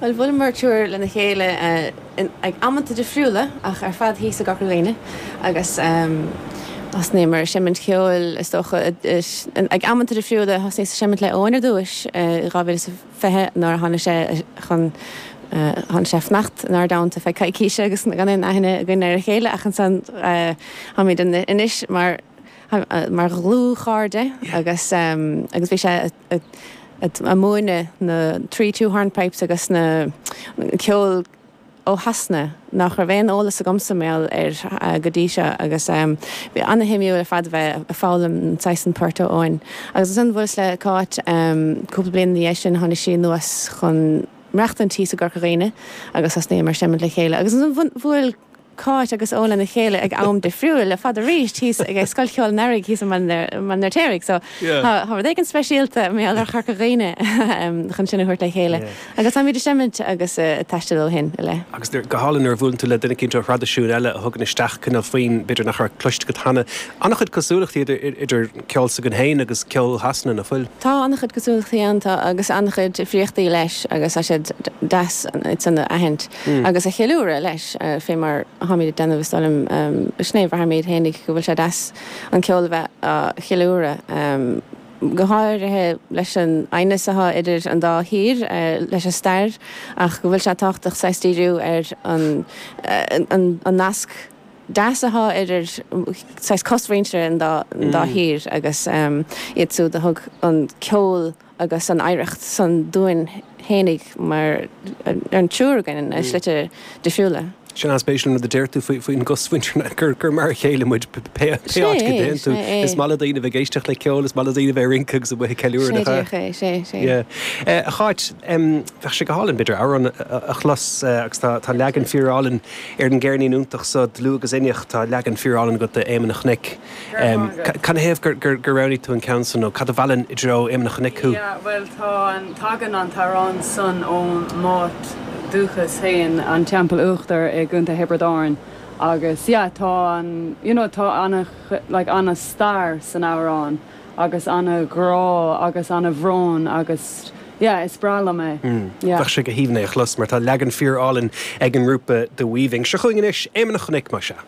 Bhuel, bhuaileamar triúr lena chéile ag amanta difriúla ach ar fad thíos i gCorca Dhuibhne agus thosnaíomar ag seimint ceoil is dócha. Ag amanta difriúla thosnaíos ag seimint le Owen ar dtúis i 2020 nuair a tháinig sé chun, tháinig sé ag fanacht in ár dteannta feadh coicíse agus gan aon aithne againn ar a chéile ach ansan táimid anois mar dhlúthchairde agus bhí sé, ag múineadh na Three Two Hornpipes agus na ceol ó Shasana nach raibh aon eolas agamsa mar gheall air go dtí seo agus bhí ana-shuimiúil ar fad a bheith ag foghlaim an saghas san port ó Owen. Agus ansan bhuaileas le Cáit cúpla bliain ina dhiaidh sin tháinig sí anuas chun maireachtaint thíos i gCorca Dhuibhne agus thosnaíomar ag seimint le chéile agus ansan bhuail Cáit agus Owen lena chéile ag am difriúil ar fad arís thíos ag Scoil Cheoil an Earraigh thíos i mBaile an Fheirtéaraigh so tá rud éigin speisialta mar gheall ar Chorca Dhuibhne chun sinn a thabhairt le chéile agus táimid ag seimint agus ag taisteal ó shin i leith. Agus go hálainn nuair a bhuaileann tú le duine éicint ó thraidisiún eile a thugann isteach cineál foinn b'fhéidir nach raibh cloiste agat cheana. An-chuid cosúlachtaí idir ceol s'againn féin agus ceol Shasana, nach bhfuil? Tá an-chuid cosúlachtaí ann, tá, agus an-chuid difríochtaí leis agus tá siad deas iad san a aithint. agus a cheiliúradh leis, fé mar atáimid ag déanamh, is dóigh liom, sin é a bhraithimid fhéinig, go bhfuil sé deas an ceol a bheith á cheiliúradh, go háirithe leis an aighneas atá idir an dá thír leis an stair, ach go bhfuil sé tábhachtach saghas díriú ar an an nasc deas atá idir saghas cosmhuintir an dá thír agus iad súd a thug an ceol agus an oidhreacht san dúinn fhéinig mar an triúr againn i slite difriúla. Tá sé ana-spéisiúil an rud a deir tú faoin gcosmhuintir gur mar a chéile muid pé áit go dtéann tú. Is maith le daoine a bheith ag éisteacht le ceol, is maith le daoine a bheith ag rince agus amuigh ag ceiliúradh. Sin é, díreach é, sin é, sin é. Yeah. A Cháit, bheadh sé go hálainn b'fhéidir amhrán a chlos agus tá leagan fíorálainn ar an gceirnín iontach so, Dlúth agus Inneach, tá leagan fíorálainn agat d'Éamonn a' Chnoic. Cad ina thaobh gur roghnaigh tú an ceann san nó cad a mheallann i dtreo Éamonn a Chnoic thú? Yeah, bhuel tá an, tagann an t-amhrán san ó m'áit dúchais féin, an Teampall Uachtair i gContae Thiobraid Árann agus yeah tá an, you know tá ana, like ana stair san amhrán agus ana ghrá agus ana bhrón agus yeah is breá liom é. Mm, yeah. Bheadh sé go haoibhinn é a chlos mar tá leagan fíorálainn ag an ngrúpa The Weaving. Seo chugainn anois Éamonn a Chnoic, más ea.